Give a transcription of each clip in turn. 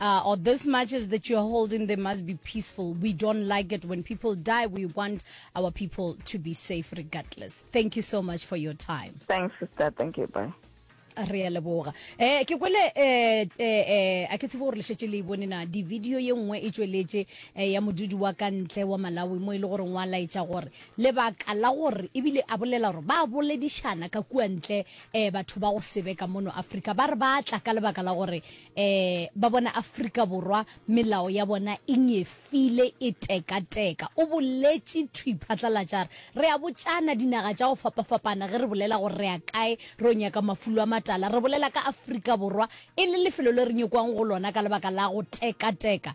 Uh, or this marches that you're holding, they must be peaceful. We don't like it when people die. We want our people to be safe regardless. Thank you so much for your time. Thanks, sister. Thank you. Bye. re a leboga um ke kwele um eh, eh, a ke tsebo gore lešetse le bone na di-video ye nngwe e tsweletše um ya modudi wa ka ntle wa malawi mo e le goreng wa laetša gore lebaka la gore ebile a bolela gore ba boledišana ka kua ntle um batho ba go sebeka mono africa ba re ba tla ka lebaka la gore Ee, ba bona Afrika Borwa melao ya bona e nyefile, e tekateka, o boletše thwi phatlalatša a re, Re a botšana dinaga tša go fapafapana ge re bolela gore re ya kae re yo nyaka mafulo a matala. Re bolela ka Afrika Borwa e le lefelo le re nyokwang go lona ka lebaka la go tekateka.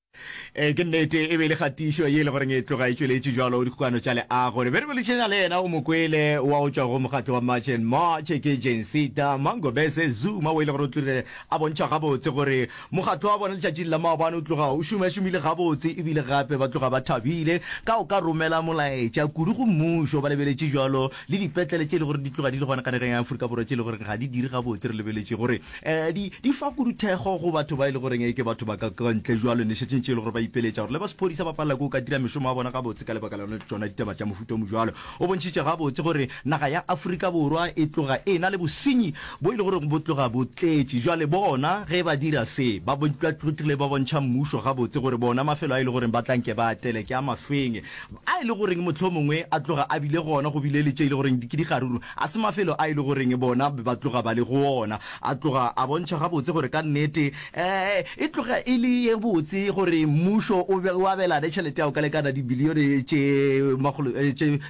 e ke nnete e be le kgatišo ye e le goreng e tloga e tšweletše jalo dikgokano tša leago re be re boledišana le yena o mokwele wa go tšwa go mokgatlo wa march and march ke jensita mangobese zuma o e le gore o tlile a bontšha gabotse gore mokgatlo wa bona letšatšing la maobane o tloga o šomašomile gabotse ebile gape ba tloga ba thabile ka o ka romela molaetša kudu go mmušo ba lebeletše jalo le dipetlele tše e le gore di tloga di le gona ka nageng ya aforika borwa tše e le gore ga di dire gabotse re lebeletše gore Ee, di, di fa kuduthego go batho ba e le goreng e ke batho ba ka ka ntle jwalo nešetšeng tše e le gore ba ipeletša gore le ba sephodisa ba palela ko ka dira mešomo ya bona gabotse ka lebaka la tšona ditaba tša mofuta o mojwalo. O bontšhitše gabotse gore naga ya Afrika Borwa e tloga e na le bosenyi bo e le goreng bo tloga bo tletše. Jwale bona ge ba dira se, ba tlile ba bontšha mmušo gabotse gore bona mafelo a e le goreng ba tla nke ba atele ke a mafeng, a e le goreng mohlomongwe a tloga a bile gona go bile le tše e le goreng ke dikgaruru. A se mafelo a e le goreng bona ba tloga ba le go ona a tloga a bontšha gabotse gore ka nnete e tloga e le ye botse gore mmušo o abelane tšhelete ya go ka lekana dibilione tše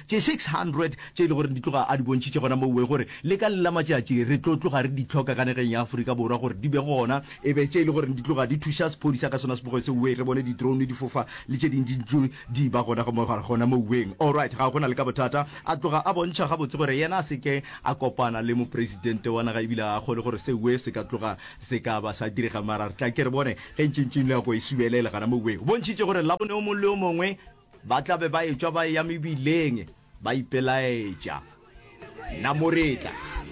600 tše e le gore di tloga a di bontšhitše gona mouwe gore le ka le la matšatši re tlo tloga re di tlhoka ka nageng ya Aforika Borwa gore di be gona e be tše e le gore di tloga di thuša sephodisa ka sona se bogoe seuwe re bone di-drone di fofa le tše dingwe Di ba gona go mo gare gona moweng. Alright, ga go na le ka bothata. A tloga a bontšha gabotse gore yena a se ke a kopana le Mopresidente wa naga ebile a akgole gore seoe se ka tloga se ka ba sa direga mara re tla ke re bone ge ntše ntšeng nako e subelela gana moweng. O bontšhitše gore Labone o mongwe le o mongwe ba tla be ba etšwa ba eya mebileng ba ipelaetša. Namoretla.